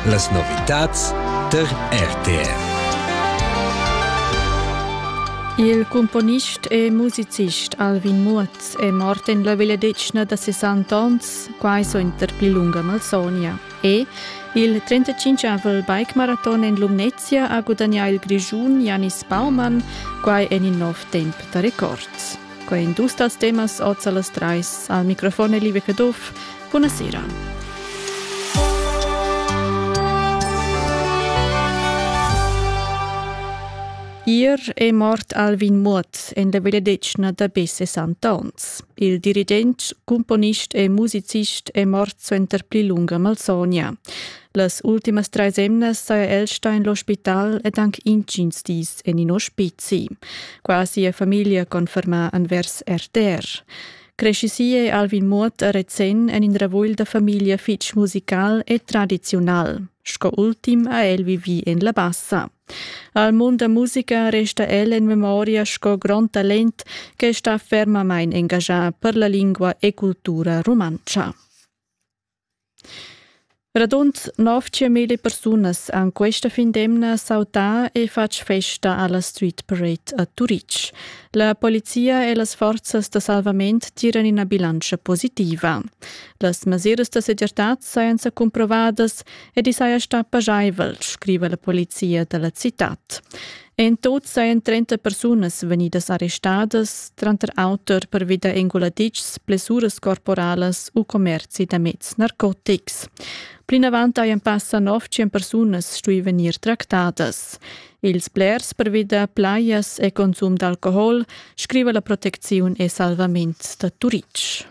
Las novitads tar RTR. Il cumponist e musicist Alvin Muoz è mort en la vegliadetgna da 60 onns, quai suenter pli lunga malsogna. E il 35-avel bike-maraton en Lumnezia ha gudagnà il Grischun Janis Baumann, quai en in nov temp da records. Quai en dus dals temas oz a las trais. Al microfon è Liebe Caduff, Buna sera. Ier è mort Alvin Muot en la benedetschna da be 60 onns. Il dirigent, cumponist e musicist è mort suenter pli lunga malsogna. Las ultimas trais emnas saja el stà en l'ospital ed anche intgins dis en in ospizi. Quasi la famiglia conferma envers RTR. crescissie Alvin Muot a Rezén en in ravugl da famiglia fitg musical e tradiziunal. Sco ultim ha el vivi en la bassa. Al mund da musica resta el en memoria sco grond talent che sta fermamain engagà per la lingua e cultura rumantscha. Radund nov tschient persunas han questa fin d'emna sautà e fatg festa alla Street Parade a Turitg. La polizia e las forzas da salvament tiran ina bilantscha positiva. Las mesiras da segirtad sajan sa cumprovadas ed i saja stà pagiaivel, scriva la polizia da la citad. En tut sajan trenta persunas vegnidas arrestadas, tranter auter pervi da enguladitschs, blessuras corporalas u commerzi da meds narcotics. Plinavant hajan passa nov tschien persunas stui vegnir tractadas. Ils blers pervi da plajas e consum d'alcohol, scriva la protecziun e salvament da Turitg.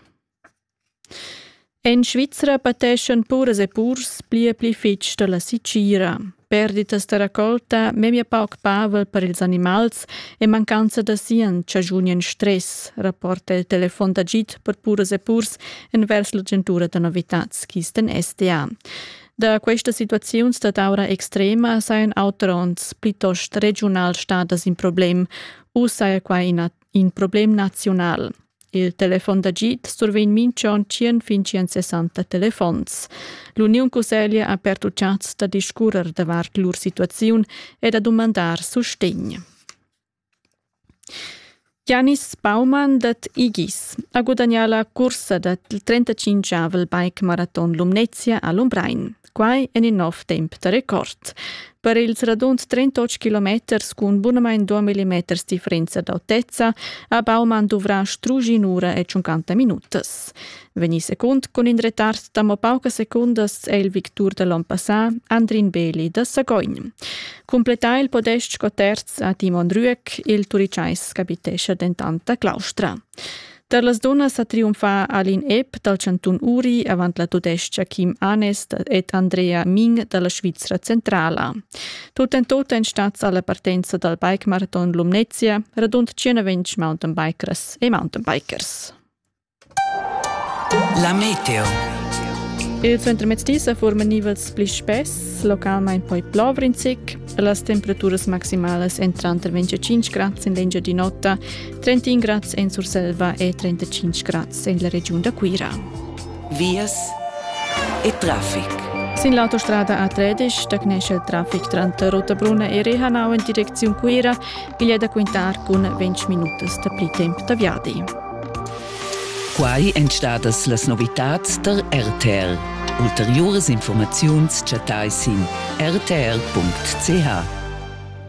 En Svizra pateschan puras e purs pli e pli fitg dalla sitgira. Perditas da raccolta, memia pauc pavel per ils animals e mancanza da sien chagiunien stress, rapporta il telefon d'agid per puras e purs envers l'agentura da novitads Kisten SDA. Da questa situaziun stat aura extrema sajan auteronts plitost regiunal stadas in problem u saja quai in, in problem nazional. Il telefon d'agid survegn minchon tschien fin tschien sessanta telefons. L'Uniun Cusseglia ha pertuchats da discurrer davart lur situaziun e da dumandar sustegn. Janis Baumann dat Igis ha gudagnà la cursa da 35-avel bike-maraton Lumnezia a Lumbrein. Quai en in nov temp da record. Per ils radund 38 kilometers cun bunamain 2 mm differenza d'autezza ha Baumann duvrà strugi un'ura e 50 minutas. Vegnì secund cun in retard da mo paucas secundas è il victur da l'on passà Andrin Beli da Sagogn. Cumplettà il podest sco terz a Timon Rüeck, il turicais capitescha dentant da Claustra. Tar las dunnas ha triumfà Aline Epp dal chantun Uri avant la tudestga Kim Anes ed Andrea Ming da la Svizra centrala. Tut en tut èn stads alla partenza dal bikemaraton Lumnezia radund 120 mountainbikers e mountainbikers. La meteo. Il centrmezdi sa forma nivels pli spess, localmain poi plovrinzic. Las temperaturas maximalas entran tranter 25 grad in l'engiadin'ota 31 grads en Surselva e 35 grads en la regiun da Cuira. Vias e traffic. Sin l'autostrada A13 da Knesha il traffic tranter Rottabruna e Rehanau in direcziun Cuira glia da quintar cun 20 minutas da pli temp da viadi. Quai èn stadas las novitads tar RTR. Ulteriuras informaziuns chattai sin rtr.ch.